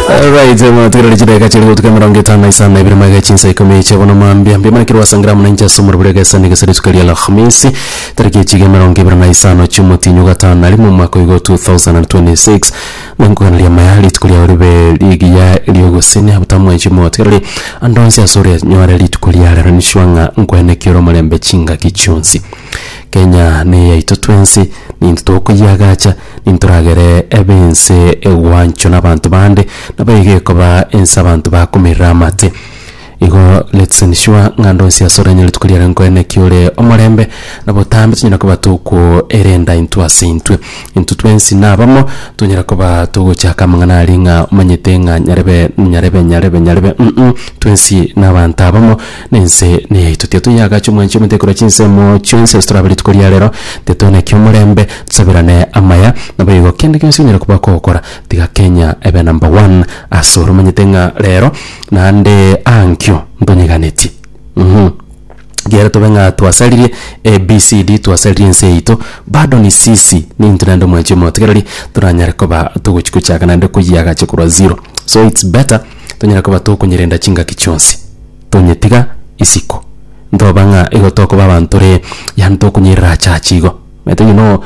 Alright, mwatugerera chidakika chiria gotuka emerongo etano na isano na ibere magega chinsa ikomi chia bono mambia mbia manakiri gwasa ngira muna inche ase omorero bore egesa na egesa rituko ria alhamisi tariki echiga emerongo ibere na isano chia omotinyo gatano na rimo omwaka oigo 2026 na nkogana riama ya rituko riao ribe rigiya riogosenia botamwechi motigereri ande onsi ase ore nyore rituko ria rero nisua ng'a nkwenekia ore omorembe chingaki chionsi Kenya neyaito twensi ninto tokoyiagacha. nintoragere ebe ense egwanchwa nabanto bande, nabo iga ekoba ense abanto bakomerera amate. Igo let's ensure ng'a ande onsi asore anyare rituko riare nkoe naki ore omorembe na botambe tonyare koba toko erenda intwe ase intwe. Intwe twensi na abamo tonyare koba togochaka amang'ana aria ng'a omanyete ng'a nyarebe nyarebe nyarebe nyarebe uh-uh twensi na abanto abamo. na ense neyaito. Tiga toyagache omwanchi omonto ekorwa chinsemo chionsi ase torabe rituko ria rero, tiga tobe na kiomorembe, tosabirane amaya, naboigo kende gionsi onyare koba ogokora, tiga Kenya ebe number one ase ore. Omanyete ng'a rero naende aa nkio ntonyeganetie mh, ekiagera tobe ng'a twasaririe ABCD, twasaririe ense yaito, bado ni sisi nintwe naende omwanchi omotigereri toranyare koba togochia gochaka naende koyiagacha korwa zero. So it's better tonyare koba tokonyerenda chingaki chionsi. tonyetiga isiko, ntoba ng'a igo tokoba abanto ree, yaani tokonyerera ache achi igo. Omanyete onye no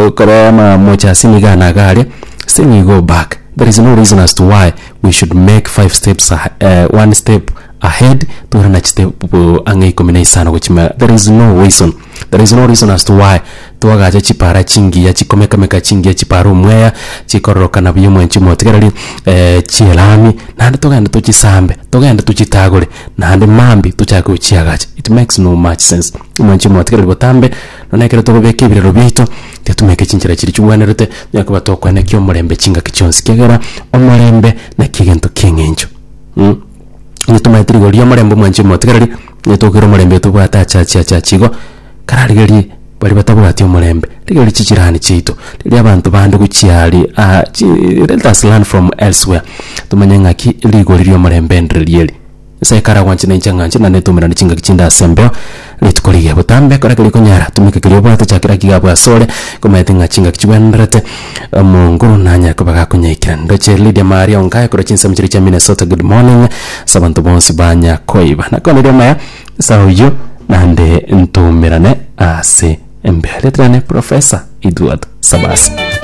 okorora ama moche ase emiga ane iga aria, still you go back, there is no reason as to why we should make five steps ahe one step ahead tore na chiste pu ang'e ikomi na isano gochia ime iga, there is no reason. There is no reason as to why twagacha chipara chingiya chikomekameka chingiya chipara omweya chikororokana buya omwanchi omotigareri eh, chielami naende togende tochisambe togende tochitagore naende mambi tochake gochiagacha it makes no much sense omwanchi omotigareri botambe nonye ekero togobeka ebirero biaito tiatumeke chinchera chiria chigwenerete nonya koba tokwenekia omorembe chingaki chionsi kiagera omorembe naki egento ki'eng'encho mm. Onye tomanyeti rigori ri'omorembe omwanchwa omotigareri, onye tokoira omorembe tobwate achiachi achiachi igo, kararigerie baria batabwati omorembe, rigerie chijirani chiaito, rigerie abanto bande gochia aria aa chi let us learn from elsewhere tomanye ng'aki rigori ri'omorembe ndiriria eri. Nyasae kare agwanche na inche ng'anche, naende tomerane chingaki chinde asembeo. Rituko riria botambe kora keria okonyara, tumeka keria obwate, chakera akige abo asore, komanyete ng'a chingaki chigwenerete, omongo nanyare koba gakonyaikera. Ndoche Lydia Maria Ongaya korwa chinsemo chiria chia Minnesota, good morning. Ase abanto bonsi banya koiba nakoneria omaya nsa oyio nande ntoumerane ase embeyo. Riaterane Professor Edward Sabasi.